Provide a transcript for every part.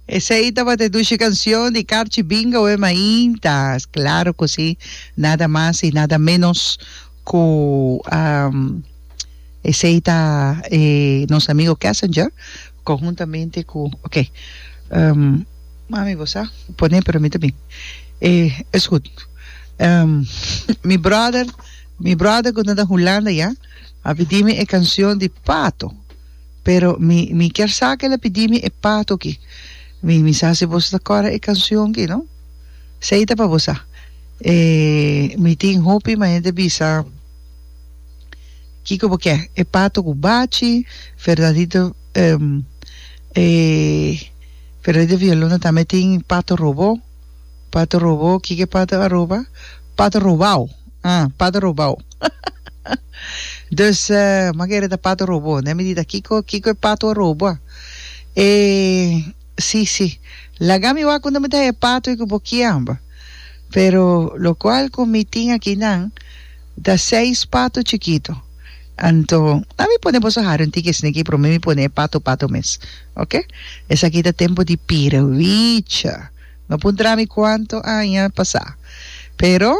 Esei tabata e dushi cancion di Carchi Bingo e mainta. Claro cu si, nada mas y nada menos cu esei ta e nos amigo Kessinger conjuntamente cu ok mami bo sa pone pero mi ta bin e es goed mi brother mi brother cu no ta Hulanda ya a pidi mi e cancion di Pato. Pero mi mi kier sa ke el a pidi mi e pato ki. Mi mi sa si boso ta kòrda e kanshon ki no? Sei ta pa bo sa e mi tin hopi ma hende bisa kiko bo ke e pato ku bachi fernandito e fernandito villalona tambe tin pato robó. Pata robó, kiko pata a roba? Pata robao, ah, pata robao. Dus, manera ta pata robó, ne mi di ta kiko, kiko e pato a roba? E, sí, sí, laga mi wak unda mi ta haña e pato ei ku bo kiamba. Pero, lokual ku mi tin akinan, ta seis pato chikito. Anto, a mi pone boso hari un tiki esneki, promé mi pone e pato, pato mes. ok esaki ta tempo di pira wicha no por ntra mi cuanto aña pasa pero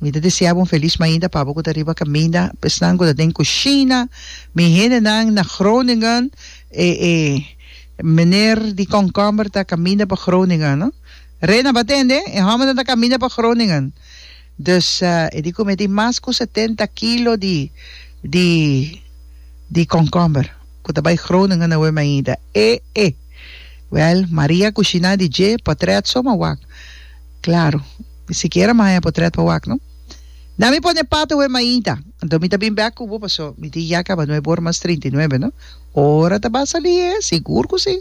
mi ta desea bo un feliz mainda pa abo cu ta riba caminda esnan cu ta den cushina mi hendenan na Groningen e e meneer di komkomber ta caminda pa Groningen no Rena bo a tende e hombernan ta caminda pa Groningen dus e di cu mi a tin mas cu setenta kilo di di di komkomber. ku ta bai Groningen na Wim ainda. E e! Wèl, Maria kushiná di dje potrèt so ma wak. Klaru, mi sikiera maña e potrèt pa wak, no? Na mi pone pato Wim ainda. Anto mi ta bin bèk ku bo paso mi tin ya kaba nuebe ora mas trinta i nuebe, no? Ora ta bai salí, e? Sigur ku sí!